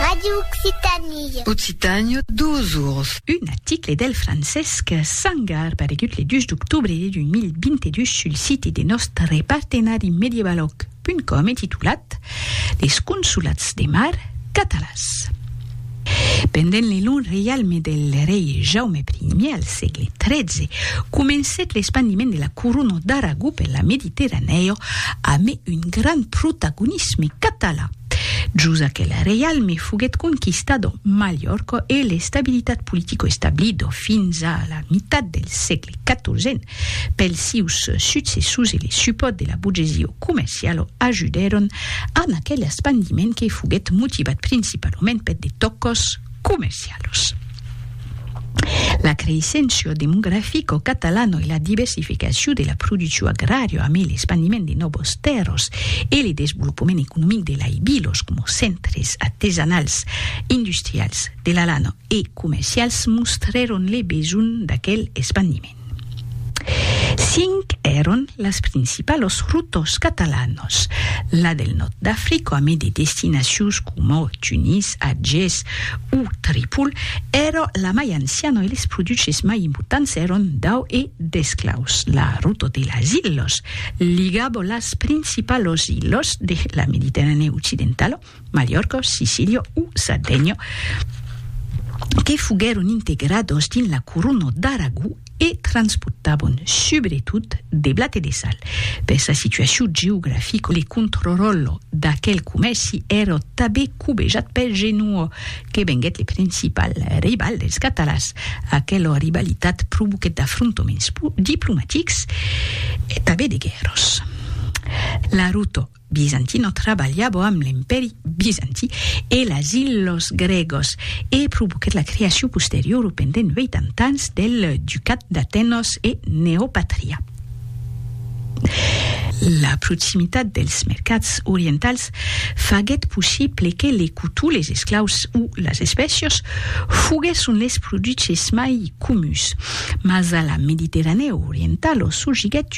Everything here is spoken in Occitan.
Radio Occitanie. Occitània, duas oras. Un article del Francesc Sangar paregut le 2 d'octobre 2022 sul site de nòstre partenari medievaloc.com e titulat Les consolats de mar catalans. Pendent le long reialme del rei Jaume I al sègle XIII, comencèt l'espandiment de la corona d'Aragó per la Mediterranèo amé un grand protagonisme catalan. Jos aquel reialme foguèt conquistado Malhòrca e l'estabilitat politico establida fins a la mitat del sègle XIVen Pels sieus successors e le supòrt de la burgesia comerciala ajudèron a aquel espandiment que foguèt motivat principalament per de tòcas comercialas. La creisséncia demografica catalana e la diversificacion de la produccion agrària amé l'espandiment de nòvas tèrras e le desvolopament economic de lai vilas coma centres artesanals, industrials, de la lana e comercials mostrèron le besonh d'aquel espandiment. Cinc èron las principalos rotos catalanos, la del nòrd d'Africa amé de destinacions coma Tunis, Agés o Tripol, èra la mai anciana e les produches mai importants èron d'au e d'esclaus. La rota de las ilhas ligava las principalos ilhas de la Mediterranèa occidentala Mallorca, Sicília o Sardenha, que foguèron integrados dins la corona d'Aragó e transportavan subretot de blat e de sal. Per sa situacion geografica, le controròlle d'aquel comèrci èra tabé cobejat per Genoa, que venguèt le principal rival dels catalans. Aquela rivalitat provoquèt d'afrontaments diplomatics e tabé de guèrras. La ruta Bizantino trabalhava amb l'Empèri Bizanti e las Ilhos Grègos e provoquèt la creacion posteriora pendent 80 ans del Ducat d'Atenos e Neopatria. La proximitat dels mercats orientals faguèt possible que le cotó, les esclaus o las espècias foguèsson les produches mai comuns, mas a la Mediterranèa orientala surgiguèt